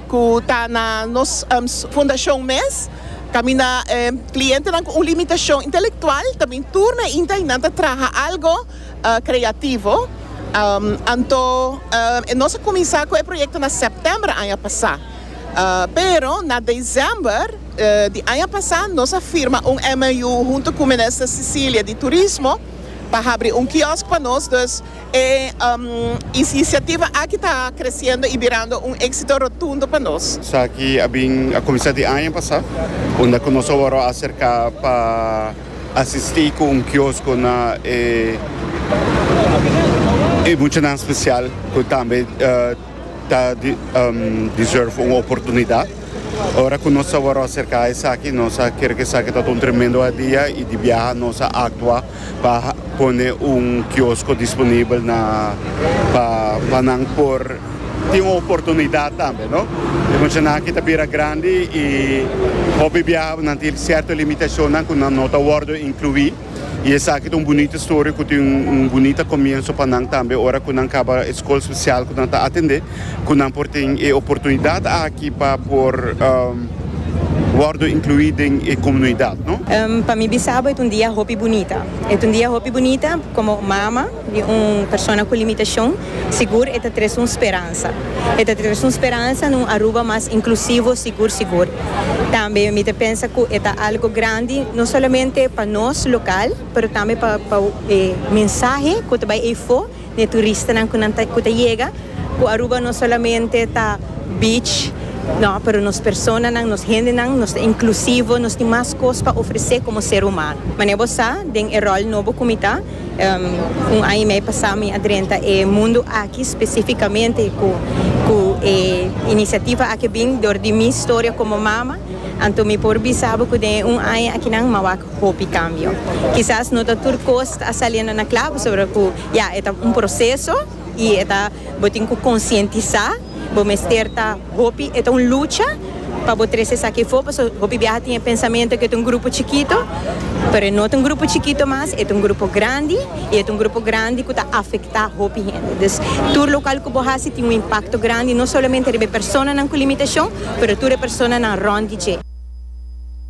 ku ta na nos fundashon mes, kaminda e klientenan ku un limitashon intelektual ta bin tur na inta i nan ta traha algu kreativo. Anto nos a kuminsá ku e proyekto na sèptèmber aña pasá, pero na desèmber di aña pasá nos a firma un MOU huntu ku Minister Cecilia di Turismo pa habri un kiosk pa nos. E inisiativa aki ta kresiendo i birando un éksito rotundo pa nos. Esaki a bin a kuminsá di aña pasá, unda ku nos a wòrdu a aserká pa asistí ku un kiosko na e muchanan spesial ku tambe. Ta deserve un oportunidad. Ora cu nos a wor acerca esaki, nos a ker cu esaki ta un tremendo hadia y di biaha nos a actua pa pone un kiosco disponibel na pa nan por tin un oportunidad tambe, no. E muchanan aki ta bira grandi y hopi biaha nan tin cierto limitacionnan cu nan no ta wordo inclui. Y esaki ta un bunita historia cu tin un bunita comienso pa nan tambe ora cu nan caba e scol special cu nan ta atende, cu nan por tin e oportunidad aki pa por wordo inclui den e comunuidad. Pa mi bisabo e ta un dia hopi bunita. E ta un dia hopi bunita como mama di un persona cu limitacion. Sigur e ta tres un speransa. E ta tres un speransa na un Aruba mas inklusivo, sigur sigur. Tambe mi ta pensa ku e ta algo grandi no solamente pa nos lokal pero tambe pa pa e mensahe ku ta bai efo na e turistanan ku nan ta ku ta yega ku Aruba no solamente ta beach nò pero nos personanan nos hendenan nos ta inklusivo nos tin mas kos pa ofresé komo ser humano. Manera bo sa den e ròl nobo ku mi ta. Un aña i mei pasá mi a drenta e mundu aki spesifikamente ku e inisiativa aki a bin dor di mi storia komo mama. Anto mi por bisa bo ku den e un aña akinan mi a wak hopi kambio. Kisas no ta tur kos ta a saliendo na kla pasobra ku ya e ta un proseso. Y e ta bo tin cu concientisa, bo mester ta hopi, e ta un lucha pa bo trece esaki afo, paso hopi biaha tin e pensamento que e ta un grupo chikito, pero e no ta un grupo chikito mas, e ta un grupo grandi y e ta un grupo grandi cu ta afecta hopi hende. Dus tur local cu bo haci tin un impacto grandi no solamente riba e personanan cu limitacion, pero tur e personanan rond di dje.